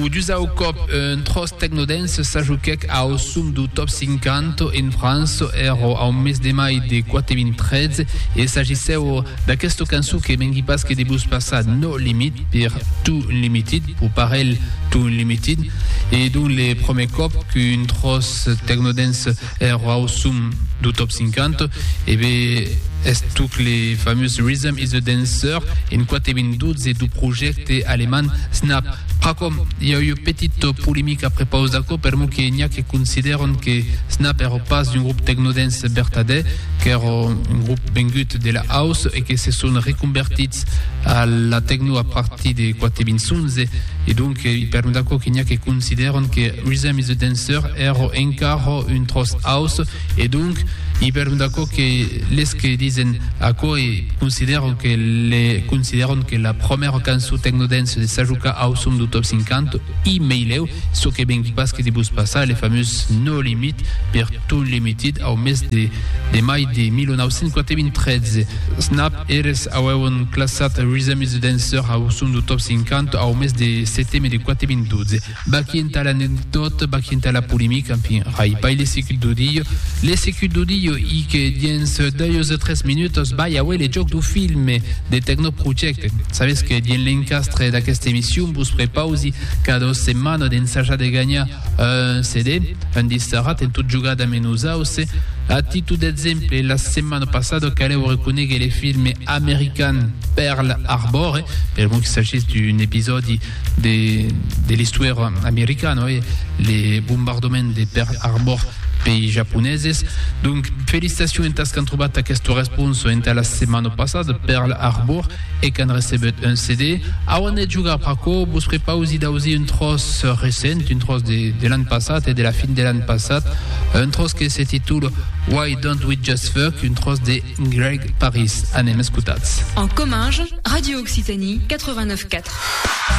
O dusau còp un tròç tecnodance s'ajoquèc au sum dau Top 50 en França èra au mes de mai de 2013 e s'agissèu d'aquesta cançon que mengui pas que de vos passar No Limit per Too Unlimited, pro parelh Too Unlimited, e donc le prumèr còp qu'un tròç tecnodance Eth rau som dau Top 50 e be eth tuc le famós Rhythm is a Dancer en quate ben 12 dau projècte alemand Snap. Pr'acò, i a ua petit polemic a prepaus d'aquò per mò que n'i a que considèron que Snap ère pas un grup tecnodance bertadèr, qu'ère un grup vengut de la house e que se son reconvertits a la tecno a partir de quate ben 11. E donc, i pèron d'aquò que n'i a que considèron que Rhythm is the Dancer èra encara un tròç house, e donc, i pèron d'aquò que les que disen aquò e considèron que le considèron que la promèra cançon tecnodance de Sajuka Awesome du Top 50, i meilèu, çò que vengui pas que de vos passar le famós No Limit per Too Unlimited au mes de de mai de 1993. Snap! Eles auèron classat Rhythm is the Dancer au son do Top 50 au mes de seteme de 4012. Vaqui entà l'anecdòt, vaqui entà la polemica, enfin, rai pas le secut do dilho. Le secut do dilho i que diens deus o tres minutas vai auer le jòc do filme The Techno Project. Sabètz que dins l'encastre d'aquesta emission vos prepausi cada dos setmanas d'ensajar de ganhar Un CD, un disserat en tot jogar damb nos auce, a títol d'exemple, la setmana passada calèu reconéguer le filme american Pearl Harbor, per bon que s'agís d'un episòdi de, de l'istòria americana, oi, le bombardament de Pearl Harbor pei japoneses. Donc, felicitacion entas qu'an trobat aquesta responsa entà la setmana passada, Pearl Harbor, E qu'an recebut un CD, auan de jogar pr'aquò, vos prepausi d'ausir un tròç recent, un tròç de l'an passat e de la fin de l'an passat, un tròç que se titula Why Don't We Just Fuck, un tròç de Greg Paris. Anem escotats. En comminge, Radio Occitanie 89.4.